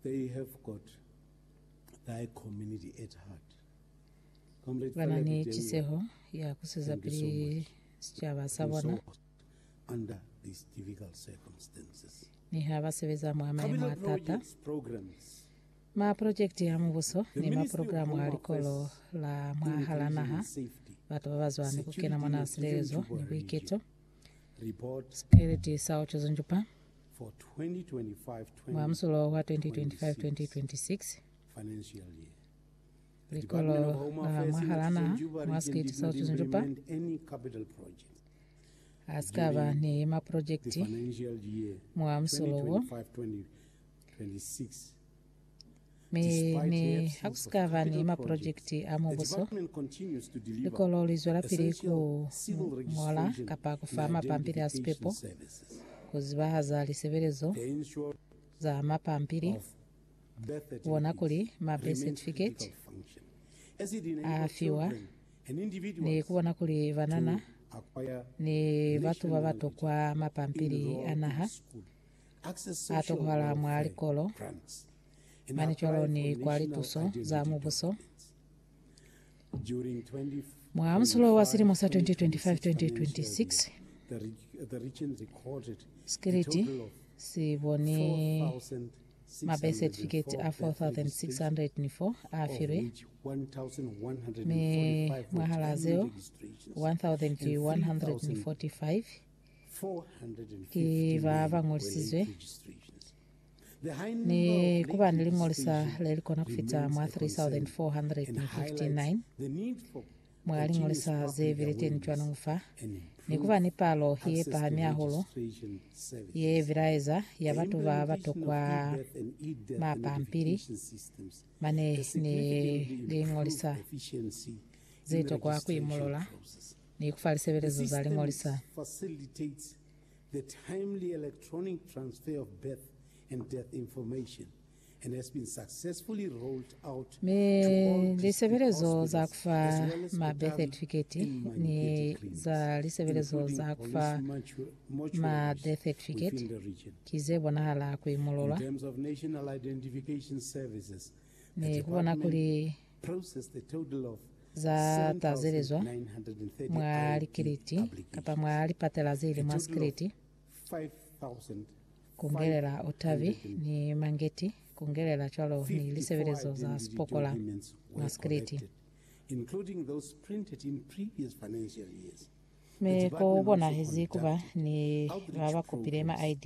They have got thy community at heart. Bana ni ciseho ya kuswezapili sicaba sa bona ni ha ba sebeza mwa maemo a tata. Maprojekiti a mubuso ni maprogramu a likolo la mwahal'a naha batu ba ba zwani ku kena mwa na silelezo ni buiketo, Spiriti Sao Chosen Jupa, Mwa musulo wa 2025-2026, Likolo la mwahal'a naha mwa Skate South Zulupa ha si ka ba ni mapurojekiti mwa musulo wo. Mi ni ha ku si ka ba ni maprojekiti a Mubuso, likolo li zwelapili ku ñola kapa ku fa mapampili a sipepo, ku zibahaza lisebelezo za mapampili, ku bona kuli ma-birth certificate a fiwa, ni ku bona kuli banana ni batu ba ba tokwa mapampili a naha. a tokohala mwa likolo mane cwalo ni kwa lituso za mubuso. Mwa musulo wa silimo sa 2025-2026, Sikiliti si boni mabe setifiketi a 4,604 a filwe, mi mwahalaa zeo 1,145 ki ba ba ŋolisizwe, mi ku ba ni liñolisa le li kona ku fita mwa 3,459 mwa liñolisa ze bile teni cwanuñu fa, ni ku ba ni palo ye pahami hahulu ye bilaeza ya batu ba ba tokwa mapampili mane ni liñolisa ze tokwa ku imolola. ni ku fa lisebelezo za liñolisa. Mi lisebelezo za ku fa ma birth certificate ni za lisebelezo za ku fa ma death certificate ki ze bonahala ku imululwa ni ku bona kuli za tazelezwa mwa likiliti kapa mwa lipatela ze li mwa sikiliti, ku ngelela otavi ni mangeti, ku ngelela cwalo ni lisebelezo za sipokola mwa sikiliti. Mi ku bonahezi ku ba ni ba ba kupile ma-ID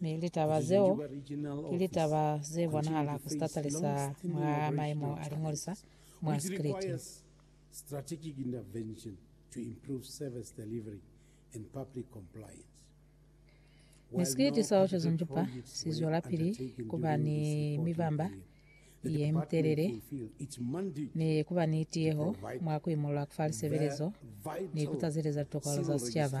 Mi litaba zeo ki litaba ze bonahala ku sitatali sa mwa maimo a liñolisa mwa sikiliti. strategic intervention to improve service delivery and public compliance. Mi sikiliti sa Ocean Jupa si zwelapili ku ba ni mibamba ye mitelele ni ku ba ni tiyeho mwa ku imolola ku fa lisebelezo ni ku tazeleza litokolo za sicaba.